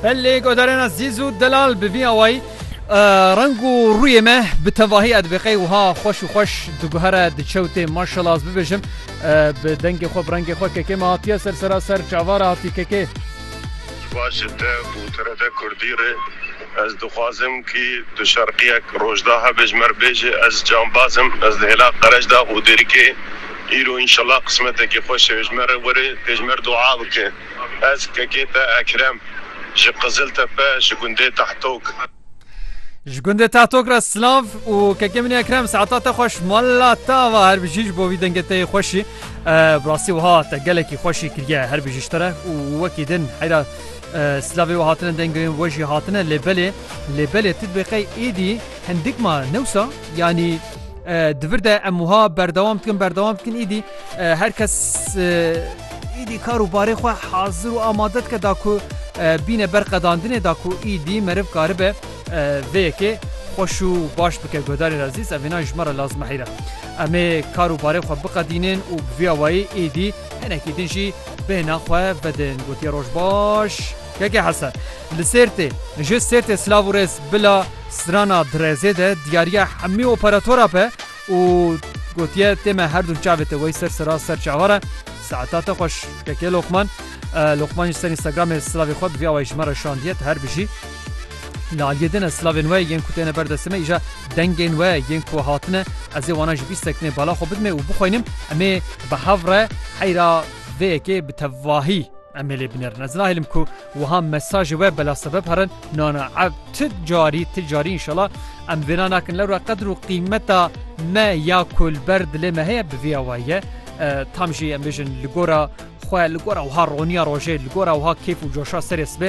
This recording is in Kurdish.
Belê godarena zîz û delal bi vî awayî reng û rûyê me bi tevahî ez bi qey wiha xweş û xweş diguhere diçewtê maşela ez bibêjim bi dengê xwe bi rengê xwe kekê me hatiye ser sera ser çavara hatî kekê. Baş ji te û TRT Kurdî re ez dixwazim kî tu şerqiyek rojda hebêj mer bêje ez cambaz im ez li hêla qereç da û dêrikê Îro înşellah qismetekî xweş e. Ji me re were pêjmer dua bike. Ez kekê te Ekrem. Ji Qiziltepe, ji gundê Tahtok. Ji gundê Tahtok re silav û kekê min Ekrem saeta te xweş mala te ava her bijî ji bo vî dengê te yê xweşî. Bi rastî wiha te gelekî xweşî kiriye her bijî ji te re û wekî din heyra silavê we hatine dengê we jî hatine lê belê lê belê tu dibê qey êdî hindik ma ne wisa yanî Di vir de em wiha berdewam dikin berdewam dikin îdî her kes îdî kar û barê xwe hazir û amade dike da ku bîne ber qedandinê da ku îdî meriv karibe vê yekê xweş û baş bike guhdarên ezîz ev hêna ji me re lazim heyre. Em ê kar û barê xwe biqedînin û bi vîya wayî îdî hinekî din jî bêhna xwe vedin gotiye roj baş. Keke Hesen. Li Sêrtê ji Sêrtê silav û rêz bila. Strana Direzê de diyariya hemî operatora be û gotiye tê me her du çavê te wey ser sera ser çavar e. Saeta te xweş keke Lokman. Lokman jî ser Instagramê silavê xwe bi vî awayî ji me re şandiye tu her bijî. Li aliyê din ez silavên we yên ku têne ber destê me îja dengên we yên ku hatine ez ê wana ji bîst sekinê bala xwe bidimê û bixwînim em ê bi hev re heyra vê yekê bi tevahî em ê lê binêrin. Ez nahêlim ku Wiha mesajê we bela sebeb herin nana ev ti carî ti carî înşela em vêna nakin lewra qedr û qîmeta me ya ku li ber dilê me heye bi vî awayî ye tam jî em bêjin li gora xwe li gora wiha roniya rojê li gora wiha kêf û coşa serê sibê